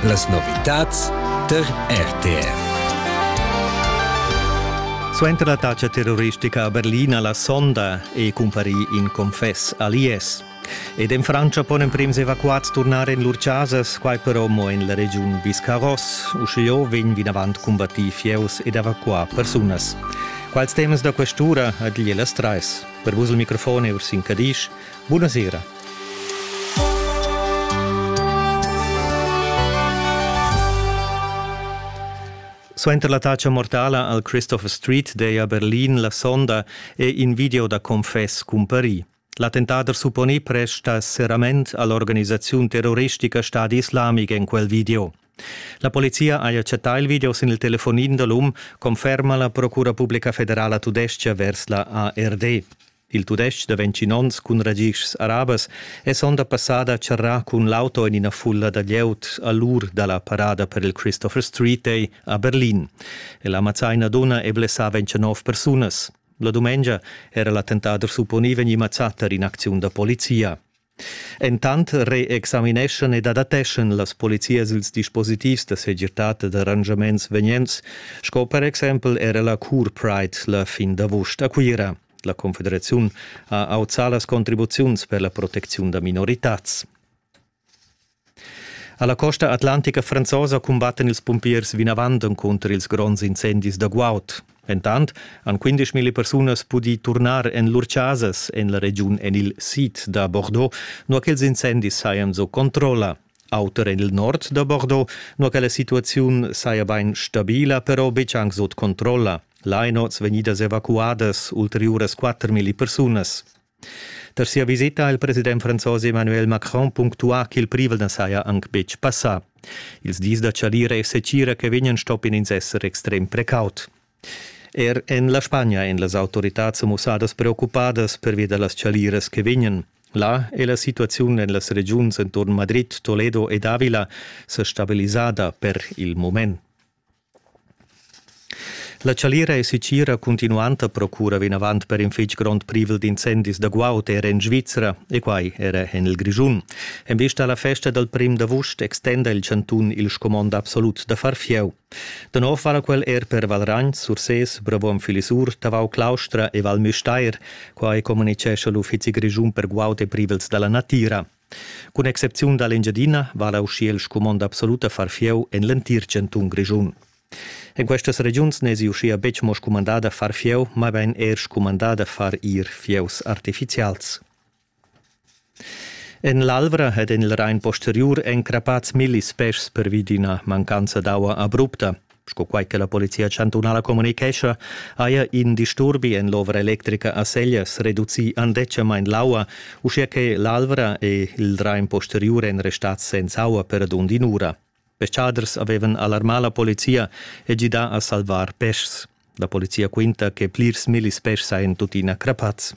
Las novitads tar RTR. Suenter l'attacca terroristica a Berlin a la sonda è cumparì in confess a l'IS. Ed en Frantscha pon emprims evacuads turnar en lur chasas, quai però mo en la regiun Biscarros. Uschia vegn vinavant combattì fieus ed evacuà persunas. Quals temas da questura ad las trais? Per vus il microfon è Ursin Cadisch. Buonasera. Suenter l'attacca mortala al Christopher Street Day a Berlin la sonda è in video da confess cumparì. L'attentader supponì presta serrament all'organisaziun terroristica Stadi Islamic en quel video. La polizia ha accettà il video sin il telefonin da l'um, conferma la Procura Pubblica Federala tudestga vers la ARD. Il tudestg da vintinonns cun ragischs arabas è sonda passada a charrar cun l'auto en ina fulla da glieud a l'ur da la parada per il Christopher Street Day a Berlin. El ha mazzà ina dunna e blessà 29 persunas. La dumengia era l'attentat supponì vegnì mazzà tar in'acziun da polizia. Entant reexamineschan ed adateschan las polizias ils dispositivs da segirtad ed arrangiaments vegnents, sco per exempel era la Cure Pride la fin d'avust a Cuira. La Confederaziun ha auzà las contribuziuns per la protecziun da minoritads. Alla costa atlantica franzosa cumbattan ils pumpiers vinavant encunter ils gronds incendis da guaud. Entant han 15.000 persunas pudì turnar en lur chasas en la regiun en il sid da Bordeaux, nua ch'ils incendis sajan sco controlla. Auter en il nord da Bordeaux, nua che la situaziun saja bain stabila, però betg anc sut controlla. Lainots vegnidas evacuadas ulteriuras 4.000 persunas. Per sia visita ha il president franzos Emmanuel Macron punctuà ch'il privel na saja anc betg passà. Ils dis da chalira e secira che vegnan stoppien ins esser extrem precaut. Er en la Spagna èn las autoritads sa mussadas preoccupadas pervi da las chaliras che vegnan. Là è la situaziun en las regiuns enturn Madrid, Toledo ed Avila sa stabilisada per il moment. La chalira e sitgira cuntinuanta procura vinavant per in fitg grond privel d'incendis da guaud era en Svizra e quai era en il Grischun. En vista alla festa dal prim d'avust extenda il chantun il scumond absolut da far fieu. Da nov vala quel er per Valragn, Sursés, Brabon Filisur, Tavau Claustra e Val Müstair. Quai communicescha l'Uffizi grischun per guaud e privels da la natira. Cun excepziun da l'Engiadina vala uschia il scumond absolut a far fieu en l'entir chantun Grischun. En questas regiuns n'èsi uschia betg mo scumandà da far fieu, mabain er scumandà da far ir fieus artifizials. En l'Alvra ed en il Rain posteriur èn crappads millis peschs pervi d'ina mancanza d'aua abrupta. Sco quai che la Polizia chantunala communicescha, haja in disturbi en l'ovra electrica a Seglias reducì andetgamain l'aua, uschia che l'Alvra e il Drain posteriur èn restads senza aua per radund in'ura. Peschaders avevan alarmà la polizia e gidà a salvar peschs. La polizia quinta che plirs millis peschs sajan tuttina crappads.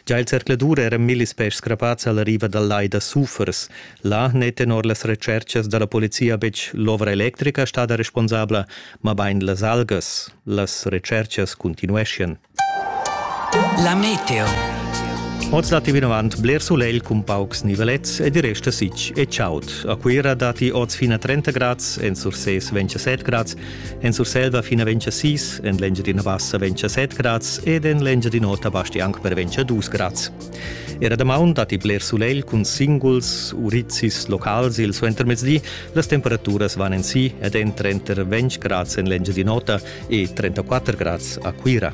Gia il zercladur eran millis peschs crappads alla riva dal lai da Sufers. Là n'è tenor las retschertgas da la polizia betg l'ovra electrica stada responsabla, mabain las algas. Las retschertgas cuntinueschian. La meteo. Oz datti vinavant bler sulegl cun paucs nivelets ed i resta sitg e chaud. A Cuira datti oz fin a 30 grads, en Sursés 27 grads En Surselva fin a ventscha 6, en l'Engiadina Bassa ventscha 7 grads ed en l'Engiadin'Ota basti anc per ventscha 2 grads. Era damaun datti bler sulegl cun singuls urizis locals il suentermezdi. Las temperaturas van en si ed en trenter 20 grads en l'Engiadin'Ota e 34 grads a Cuira.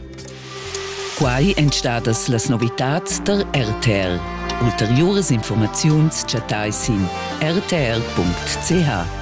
Quai èn stadas las novitads der RTL. Ulteriuras informaziuns chattai sin rtl.ch.